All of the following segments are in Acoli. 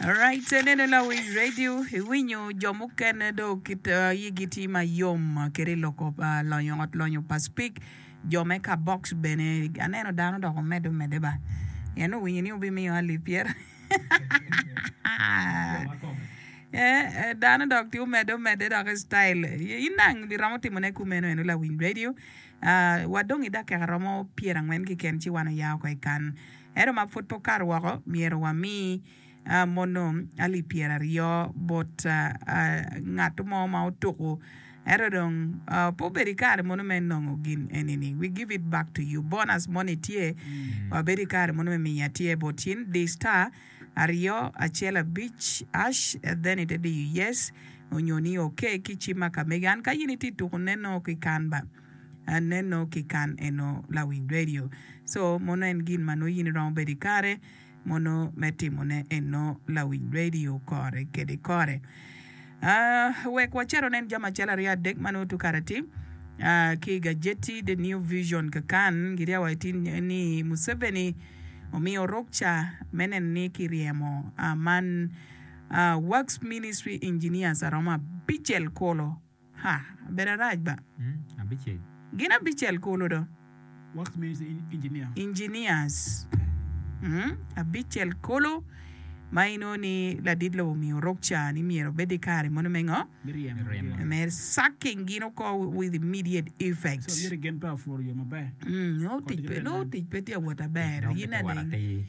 Alright, ineno lawic radio, iwinyo jo mukene do kit uh, yigi tye ma yom uh, kede loko pa lonyo ot lonyo pa speak jo me ka box bene aneno dano dok omedde omedde ba en owinyo ni obimiyo ali pyera Eh, eh, dano dok tye omedde omedde dok style Y- in dang biromo timone kumeno eno lawiny radio Ah, wa dong i dakika romo pyerangwen keken ci wan oya oko i kan Ento ma pud pe okato woko, myero wami mono alip pyeraryo bot ngat mo ma otuko. Ento dong pe obedo i kare mono me nongo gin eni ni. We give it back to you. Bonus moni tye, wabedo i kare mono me miyi atir bot cin, di star aryo acel abic ash then ite diyo yes onyo ni okay ki cim ma ka mege. An ka in itye tuko nen nongo ki kan ba. aneno ki kan eno lawiny radio so mono en gin ma nongo in iromo bedo ikare mono me timone eno lawiny radio kore kede kore aa wek wacito wanen jami acel aryo adek ma nongo tye kare atim aa ki i gajeti the new vision kakan giriya wa itin ni Museveni omiyo rukca me neno ni kiryemo aa man aa works ministry engineers aromo abicel kulu Ha, abedo arac ba. Gin abicel kulu do. Engineers. Hmm, abicel kulu. Ma inongo ni ladit lobo omiyo orok ca ni myero obed i kare mono me ngo? Me sucking gin oko with immediate effect. Hmm, nongo tic pe, nongo tic pe tye ka wot aber. Yin adeng.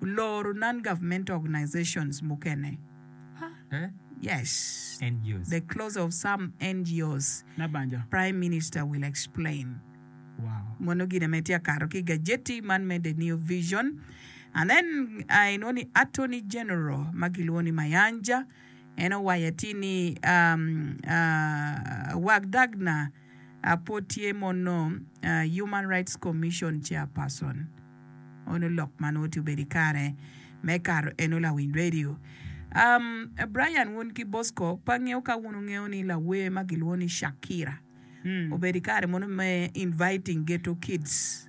Loro non-governmental organizations mukene, yes, the close of some NGOs, Prime Minister will explain. Mono gine ma itye ka kato ki i gajeti man me The New Vision. And then inongo ni Attorney General ma kilwongo ni Mayanja en owaco atir ni Wagdagna pwod tye mono Human Rights Commission Chairperson. Onongo lok man onongo tye obedo i kare me kato en onongo lawiny radio. Brian wun ki Bosco pe angeyo ka wun wungeyo ni lawer ma gilwongo ni Shakira obedo i kare mono me inviting ghetto kids.